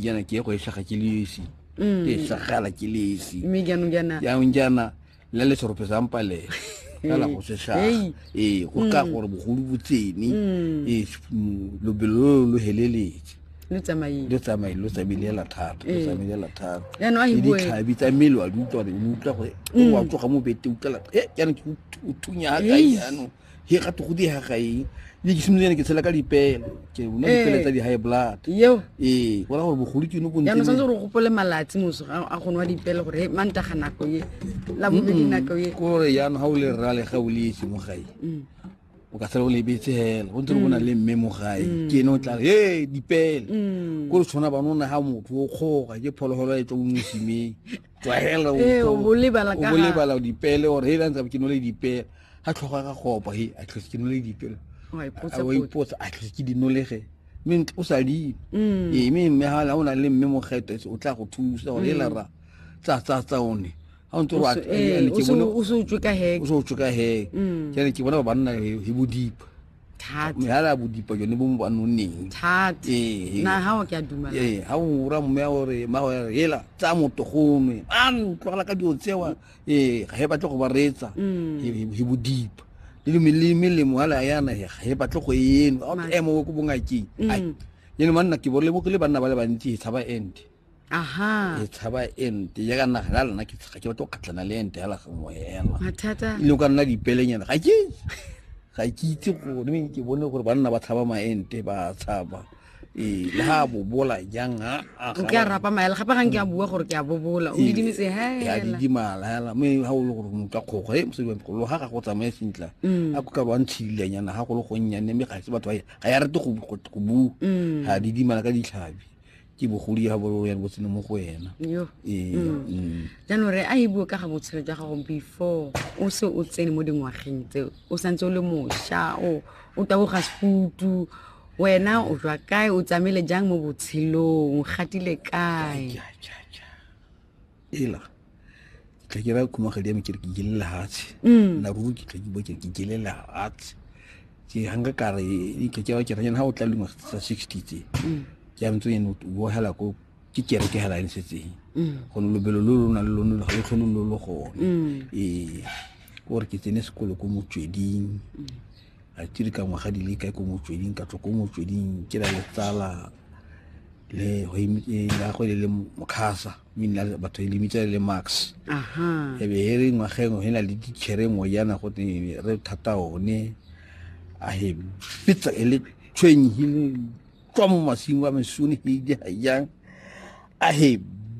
jaana ke go e shaga ke le esi mm. ke e shagala ke le esi mme jaanong jaana jaanong jaana le le serope sa mpale fela go se shaga ee go ka mm. gore bogolo bo tsene mm. ee lobelo lo lo heleletse lo tsamaile lo tsamaile lo tsamaile la thata lo tsamaile la thata jaanong a e bue ditlhabi tsa mmele wa di utlwa gore o wa tsoga mo bete utlwa la e jaanong ke o thunya ga kae jaanong he ga te go di ha ga e le ke simolene ke tshela ka dipele ke una eh. dipele tsa di high blood yo eh go ra gore bogolo ke no go ntse ya no santse re gopole malatsi moso a go nwa dipele gore ma nta ga nako ye la bo di nako ye go re ya no ha o le rra le ga o le itse mo gae mm. o ka sala o le betse hela go ntse go bona mm. le mme mo gae mm. ke no tla he dipele go re tshwana ba nona ha motho o kgoga ke phologolo e tlo mo simeng tlwahela o eh, bo lebala ka o lebala dipele or he lantsa ke nole dipele ha tlhoga ga gopo he a tlhoga ke nole dipele wa ipotsa a tlhoga ke dinolege mme o sa di mm. e mme mme ha la ona le mme mogeto o tla go thusa o le mm. ra tsa tsa tsa one ha o ntse o eh, ke bone o se o tswe ka he o se o tswe ka he ke ne ke bona ba banna he bodipa thata mehara ya bodipa jone bo mo ba nonneng thata Ee. na ga o ke a dumela ee ga o ra mme gore mmago ya re hela tsa motogonwe an tlogela ka dilo tsewa ee ga e batle go ba reetsa Mm. he he bodipa le dime- le melemo ala yana he ga e batle go eno a Ma- emo ko bongakeng Mm. ai yene manna ke bole mo ke le banna ba le bantsi he tshaba ente aha e tshaba ente ya ka naga ya lena ke tsga ke batlo kgatlana le ente hela gangwe hela mathata e le ka nna dipelenyana ga ke ga ke itse gore me ke bone gore banna ba tshaba maente ba tshaba ee le ga bobola jang ke a rapa maela gape gang ke a bua gore ke a bobola o didimetse hela didimala hela me ga o le gore motho a kgogo e mosadi wa mokgolo ga ga go tsamaya sentla mm. a ko ka ba ntshidilanyana ga go le gonnyane mme ga se batho ga ya rete go bua mm. ga didimala ka ditlhabi ke bogodi ga bolo ya botseno mo go wena Yo. Ee, Mm. mm. jaanong re a e bue ka ga botshelo jwa gago before o se o tsene mo dingwageng tse o santse o le mošwa o o taboga sefutu wena o jwa kae o tsamaile jang mo botshelong o gatile kae Ja, ja, ja. ela ke tla ke ra khumagadi ya me ke re ke jele lehatshe mm. na ruri ke tla ke bo ke ke jele lehatshe ke hanga ka re e ke ke wa ke re ha o tla lengwa tsa 60 tse mm. ke a ntse eno o hela ko ke kere ke hela ntse tse mm. go lobelo lo lona le lona le go lo lo go e o re ke tsene sekolo ko motsweding a tiri ka ngwaga di le kae ko motsweding ka tswa ko motsweding ke la letsala le go e, e, le mokgasa mi nna batho e lebitsa le max e be he re ngwageng he na le dichere ngwe yana go teng re thata one a he fitsa e le tshweng he le tswa mo masimo a mesone he di ha yang a he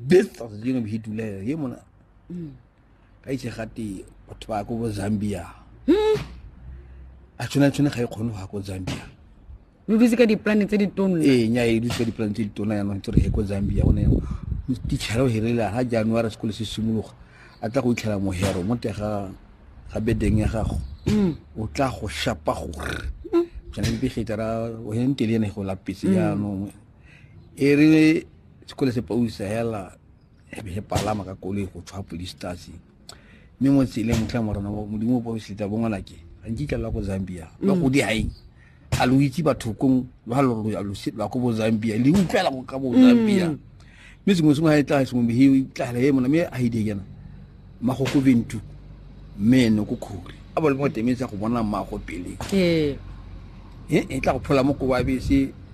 betsa dingwe he dula he mona mm. ka itse gate batho ba ko bo zambia hmm? a tshwana tshwane ga e kgone go ya ko zambia lo dutse ka diplane tse ditona ee nya e dutse ka diplane tse ditona yanong tse re e ko zambia one tichara o hirile ha january sekolo se simologa a tla go itlhela mohero mo tega ga bedeng ya gago hmm. o tla go shapa gore hmm. kana mpe gitara o hen tele ene go lapetse yanong e re sekolo se pausa hela e be e palama ka koloi go tshwa police stasi mme mo tseleng tlha morena modimo o bosetsa bongwana ke ga nkitla la ko zambia ba mm. go di gaeng a lo itse bathokong ba lo la ko bo zambia le utlwela go ka bo zambia mm. mme sengwe sengwe ga e tla sengwe mehe e tlagela e mona mme a e di kena magoko bentu mme ene ko kgori a bo le mo temetse go bona mmago pele ee. e tla go phola mo ko wa bese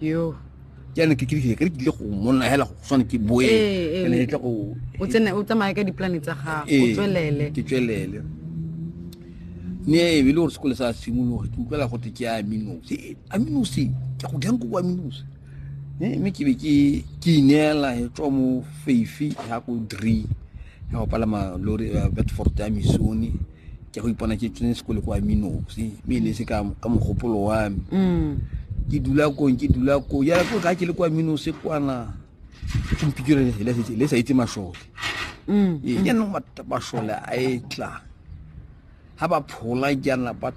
yo jaanong ke kile ke tlile go monna hela go tshwane ke boe ke ne ke go o tsene o tsamaye ka diplane tsa gago o tswelele ke tswelele ne e le gore sekole sa simologa ke utlwela gote ke aminose aminose ke go jang ko bo aminose mme ke be ke ke ineela e tswa mo feifi ya ko dree ya go palama lori eh, bedford ya misone ke go ipona ke tsene sekole kwa minosi mme e ne se ka ka mogopolo wa me Mm. ke dula kong ke dula kong ya ko ga ke le kwa minosi kwana ke mpikire le- le le sa itse mashole Mm. ee jaanong mat- mashole a e tla ga ba phola jaana ba